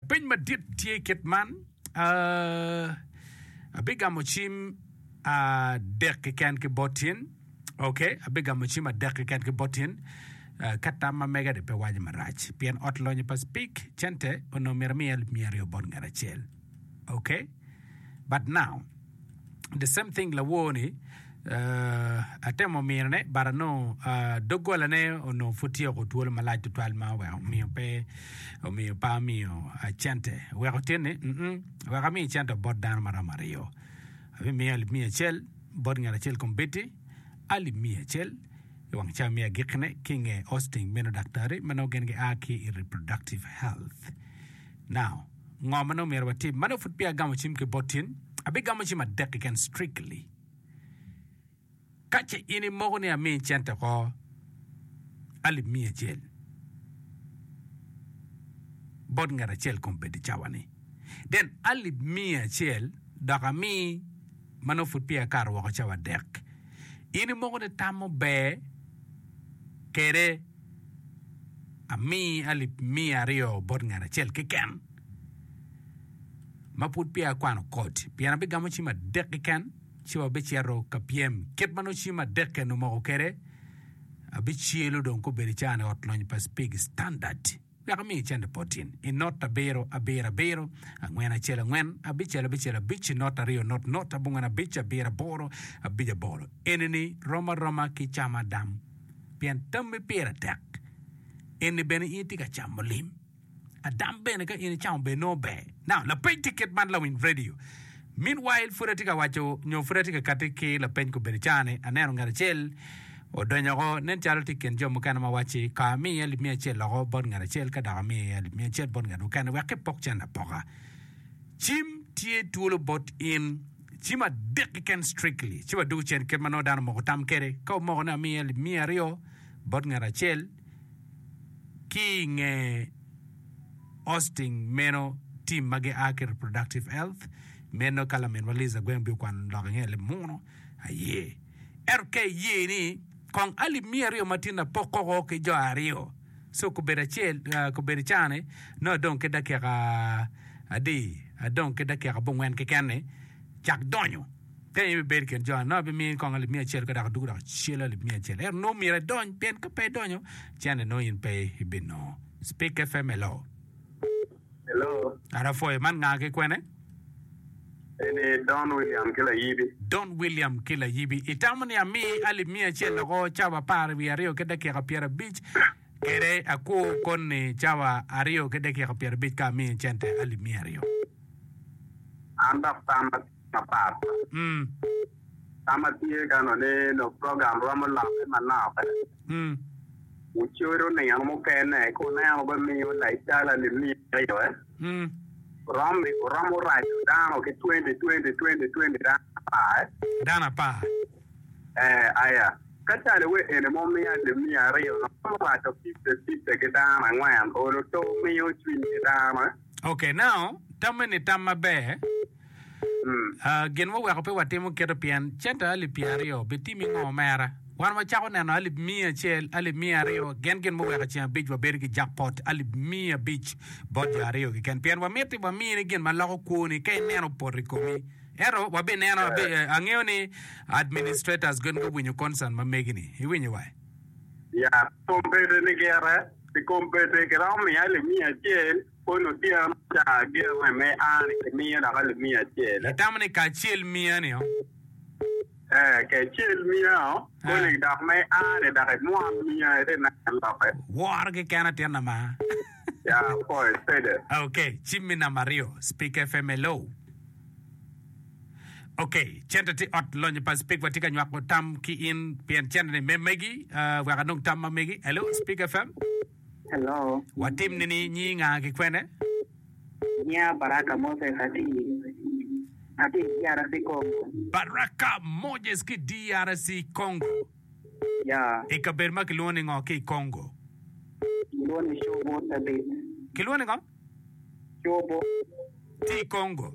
Peny madit tye i kit man, abigamo cim adek keken ki bot in, ok, abigamo cim adek keken ki bot in, ka tam ma mega ni pe waco marac, pien ot lonyo pa Speke cente onongo myero amiye alip miya aryo bot ngat acel, ok, but now. the same thing lawor ni uh, atemo mino ne but anongo uh, doggola ne onongo pud tye oko twolo malac tutwal ma oweko omiyo pe omiyo pa amiyo uh, cente weko tin ni mm -mm, weko amiyo cente bot dano maromo aryo abimiyo alip miya acel bot ngat acel kombeddi alip miya acel i wang ca miya gikkine ki nge hosting meno daktari ma nongo gin gia ki i reproductive health Now, ngo ma nongo myero watim? Ma nongo pud peya agamo cim ki bot in, abigamo cim adek keken strictly. Ka ce in imoko ni ami cente oko alip miya acel bot ngat acel kong bed i cawa ni, then alip miya acel dok ami ma nongo pud peya akato woko cawa adek. In imoko ni tam muber kede. ami alip miya aryo bot ngat acel keken ma pud peya akwano koti pien abigamo cim adek keken ci wabicito ka pyem kit ma nongo cim adek eni omoko kwede abicelo dong ka obedo icaa ni ot lony pa Spig Standard. Wek amiyi cente boti i not abiro abiro abiro, angwen acel angwen, abicel abicel abic, not aryo not not, abongwen abic, abiro aboro, abic aboro. Eni-ni rom aroma ki camo adam, pien tammi pire tek. Eni bene in itye ka camo lim. Adam bene ka in icamo bene nongo ber. Now, lapeny tikit man lawiny redio. Meanwhile, pud atye ka waco nyo pud atye ka kati ki lapeny kobedo caa-ni, aneno ngat acel odonyo oko, nen calo tye i kin jo mukene ma wacci, Ka ami iye alip miya acel loko bot ngat acel, ka dok ami iye alip miya acel bot ngat mukene, wek epok cen apoka. Cim tye twolo bot in. Cim adek keken strictly. Ci wadoko cen kit ma nongo dano omoko tam kwede. Ka omoko ni ami iye alip miya aryo bot ngat acel, Ki i nge Austing meno, tim ma gia ki Reproductive Health meno ka laminwa Liz Agweng bino kwano lok i nge leb muno aye. Ento ka iye ni kong alip miya aryo ma tinna pok koko ki jo aryo, so kubedo acel, ah, kubedo icane nongo adong ki dakika adi? Adong ki dakika abongwen keken-ni cak donyo. Ka in ibibedo i kin jo anongo, abimiyo in konga libinga acel, ka dok aduku dok acela libinga acel. Ento nongo myero idony, pien ka pe idonyo, cente nongo in pe ibinongo. Spik FM, hello. Hello, Kara pwoyo, man nga ki kwene? eni Don William ki layibi. Don William ki layibi. Itamo ni ami alip miya acel loko cawa apar wiye aryo ki dakika pyerabic kede akwo koni cawa aryo ki dakika pyerabic ka amiyo cente alip miya aryo. An dok tam mapat ka ma tye ka nongo ni nongo program romo lokke manok wucodo nino mukene ka wuneno bene miyo lacala limiyo romo raco dano ki twenty twenty twenty twenty dano apar ee aya ka calo wa eni ma wumiya limiyo aryo romo raco fifty fifty ki dano angwen olo to miyo cwiny ki dano. Okay now tamme ni tam maber uh, gin muweko pe watimo keto pien centa alip pyer aryo bitimi ngo omera wan wacako neno alip miya acel alip miya aryo gen gin muweko ceng abic wabedo ki jackpot alip miya abic bot jo aryo keken pien wamiti wamini gin maloko kwoni ka ineno opoto i komi ento wabineno abe- eh, angeyo ni administrators gen guwinyo concern ma megi ni iwinyo wa Yat kom bete ni gire pi kom bete ki romo miya limiya acel koni otyeno caa gire me ani ki miyo laka limiya acel. Itamo ni kacel miya ni o? Ee kecel miya o koni dok me ani dok imwon miya ite neno loke. Woro ki ken atin ama. Ya poe sede. Okay, cim mi namba aryo, Speak FM hello. Ok, cente tye ot lonyo pa speak watye ka nywako tam ki in pien cente ni me megi uh, wek anong tam ma megi. Hello Speak FM. Hello. Watim ni ni nyi nga ki kwene? Nya Baraka Moses ati ati DRC Congo. Baraka Moses ki DRC Congo. I kabedo ma kilwongo ni ngo ki i Congo? Gilwongo ni Cobo Cabit. Kilwongo ni ngo? Cobo. Tye i Congo?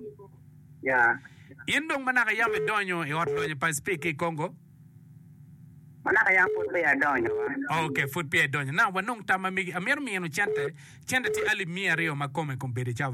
Ya. In dong manaka yam idonyo i Ot Lonyo Pacific ki i Congo? Manaka yam pud peya adonyo wa. Ok, pud peya idonyo. Now, wanong tam ma megi. Amito minu cente. Cente tye alip miya aryo ma kome kombeddi cawa ni.